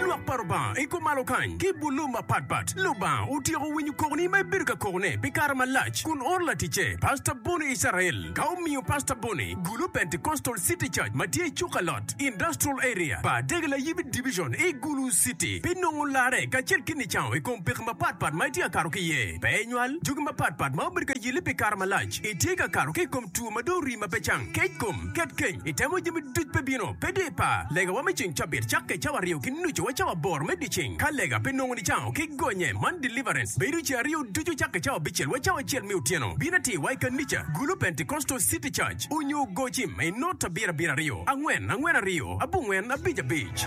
Lwak pa Lubanga i kom malo kany ki bulu mapatpat. Lubanga otyeko winyo kokoni ma ibedo ka kokone pi kare malac kun oro laticce, Pastor Bonnie Israel, ka omiyo Pastor Bonnie gulu Pentecostal City Church ma tye i Cukalot Industrial Area, pa Dege Layibi Division i Gulu City. Pi nongo larre kacel ki nicango i kom pekki mapatpat ma itye ka kato ki iye, pe inywal jogi mapatpat ma obedo ka yelli pi kare malac, itye ka kato ki i kom two ma dong rii ma pe cang, kec kom, Ket keny i temo jami duc pe bino, pe dye par. Legawa me ceng cabit cakke cawa aryo ki nucu wa cawa aboro me dyeceng. Ka lega pe nongo nicango ki gonye man deliverance bedo ce aryo ducu cakke cawa abicel wa cawa acel me otyeno. Bin atir wa i kanica gulu Pentecostal city church onyo gocim i not abiro abiro aryo angwen angwen aryo abongwen abic abic.